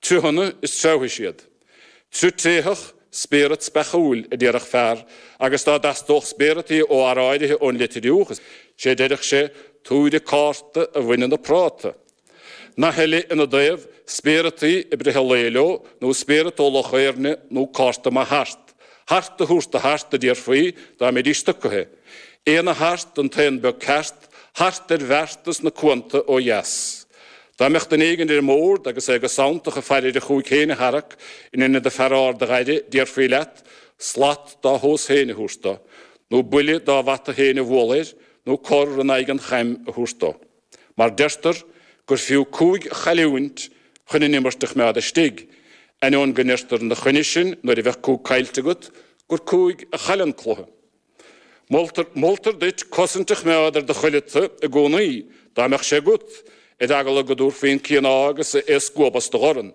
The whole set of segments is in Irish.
Triuchanna is treabhfaidh siad. Triuch tréitheach, spéireat speachúil a déarfadh fear agus dá dteastódh spéireataí ó fhear áirithe ón Leitriúch is é a deireadh sé Tabhair an cárta a bhain na prátaí. Nath eile ina dtaobh, spéireataí ag breith an lae leo nó spéireat ó Loch Éirne nó cárta maith hart. Hart a thabhairt do hart a déarfaí dá mbeidís stucaithe. Aon a hart, an t-aon beag ceart, hart ar bheartas na cuanta ó dheas. Dá mbeadh duine éigin ar an mbord agus é go sanntach ag faire ar a chúig féin a tharrac in inead a fear ard a ghaire, déarfaí leat, slat dá thomhas féin a thabhairt do, nó buille dá bhata féin a bhualadh air, nó cor in aghaidh an chaim a thabhairt dó. Mar deirtear gur fiú cúig a chailliúint chun an imirt a choimeád istigh, ainneoin go ndeirtear ina choinne sin nuair a bheadh cúig caillte agat gur cúig a chailleann cluiche. Moltar, moltar duit cosaint a choimeád ar do chuireata i gcónaí, dá mbeadh sé agat, ar eagla go dtabharfaí an cíoná agus é a scuabadh as do dhorn.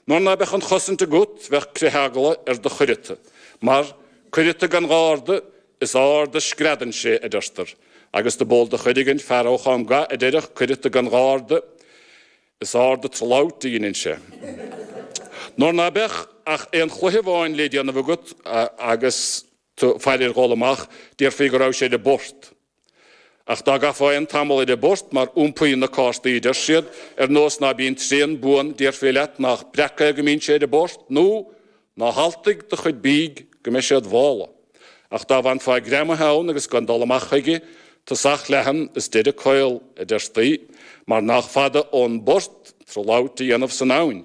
Nuair ná beadh an chosaint agat, bheadh critheagla ar do chuireata. Mar, cuireata gan gharda, is ard a screadann sé, adeirtear. Agus do b'eol do chuid againn fear ó Cháim Gath a deireadh cuireata gan gharda, is ard a trollout a dheineann sé. Nuair ná beadh ach aon chluiche amháin le déanamh agat agus. tú ag faire ar dhul amach, déarfaí go raibh sé ar an bport. Ach dá gcaithfeá aon tamall ar an bport mar iompaíonn na cártaí adeir siad, ar nós ná bíonn tréan buan, déarfaí leat nách breac é go mbíonn sé ar an bport, nó Ná haltaigh do chuid bídh go mbeidh sé id mhála. Ach dá bhfanfá greamaithe ann agus gan dul amach chuige, tosach leathan is deireadh caol, adeirtí, mar nách fada ón bport tráth labhairt a dhéanamh san abhainn.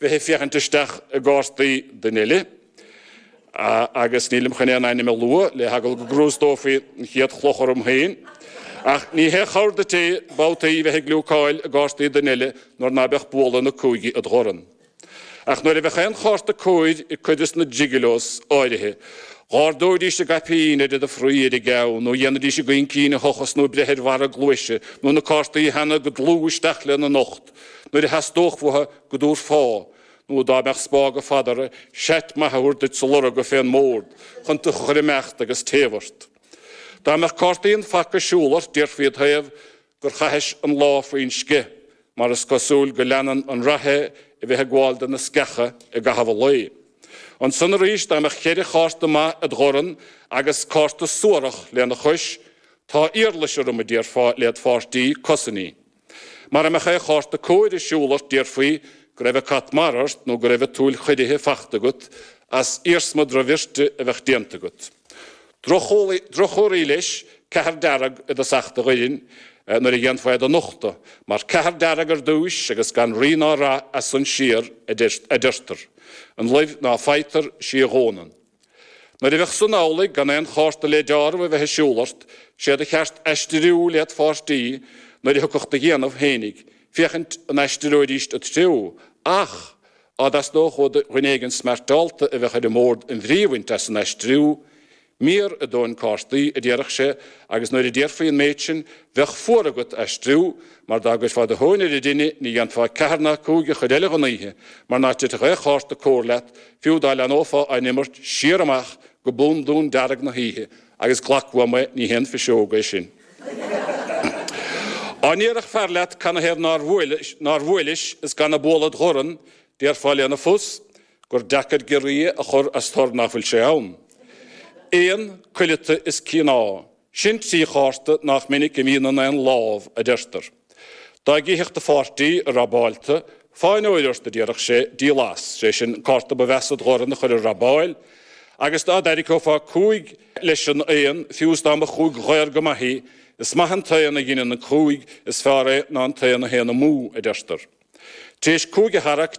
bheith ag féachaint isteach i gcártaí duine eile, agus nílim chun aon ainm a lua, le heagla go gcrústófaí an chéad chloch orm féin. Ach ní haon chabhair duit é babhtaí bheith ag gliúcáil i gcártaí duine eile nuair ná beadh bualadh na cúigí id dhorn. Ach nuair a bheadh aon chárta cóir ag cuid de na Gigolos áirithe, dh'ardóidís a gcaipín ar do chroí ar a gceann, nó dhéanfaidís a gcaoncín a thochas nó breith ar bharra a gcluaise, nó na cártaí a theannadh go dlúth isteach lena n-ucht. nuair a theastódh uatha go dtabharfá, nó dá mbeadh spág fhada orthu, seat maith a thabhairt duit sa lorga fén mbord chun tú a chur imeacht agus téamh ort. Dá mbeadh cártaí an phaca ag siúl ort déarfaí id thaobh gur chaithis an lá faoin sceich, mar is cosúil go leanann an rath é a bheith ag gabháil do na sceacha i gcaitheamh an lae. Ansan arís dá mbeadh cheithre chárta maith id dhorn agus cárta suarach lena chois, Tá iarlais orm, a déarfá led pháirtí, cosain í. Mara mbeadh ao' chárta cóir ar siúl ort déarfaí go raibh a' cat mara ort nó go raibh a' tsúil chiorraithe fachta agat as iarsma drochbhirte a bheadh déanta agat. Droch-chulaith, droch-chomhartha leis ceathair dearg i dtosach do dhoirn nuair a dhéanfá é do nochtadh, mar ceathair dearg ar dtúis agus gan rí ná rath as san siar adeirtear. An luibh ná faightear, 'sí a fhónann. Nuair a bheadh san amhlaidh, gan aon chárta le deáramh a bheith ar siúl ort, sé do cheart aistiriú led' pháirtí nuair a thiocfadh do dhéanamh fhéinig, féachaint an aistreoidíst id threo, ach 'á dteastódh ó dhuine éigin smeartáilte a bheadh ar an mbórd an bhrí a bhaint as an aistriú, mírath do na cártaí, a déarfadh sé, agus nuair a déarfaí an méid sin, bheadh fuar agat aistriú, mar dá gcuirfeá do thóin ar an dtine ní dhéanfá ceathair ná cúig an chuid eile dhon oíche, mar ná titfeadh ao' chárta cóir leat, Fiú dá leanófá á n-imirt siar amach go bundún dearg na hoíche agus glac uaim é, ní haon phiseóg é sin. 'Á ndéarfadh fear leat canathaobh nár bhuailis, nár bhuailis is gan a bualadh id dhorn, déarfá lena phus gur deacair giorria a chur as tor nach bhfuil sé ann. Aon, cuileata is cíoná. Sin trí chárta nach minic a bhíonn in aon lámh, a deirtear. Dá gcífeadh do pháirtí, a' rabáil tu, fáinne óir ort a déarfadh sé, díol as, sé sin an cárta ba mheasa id dhorn a chur ar rabáil, agus dá dtarraiceofá cúig leis an aon, fiú is dá mba chúig dhaor go maith í, is maith an t-aon a dheineann an cúig, is feárr é ná an t-aon a théann amú, a deirtear. Tar éis cúig a tharrac,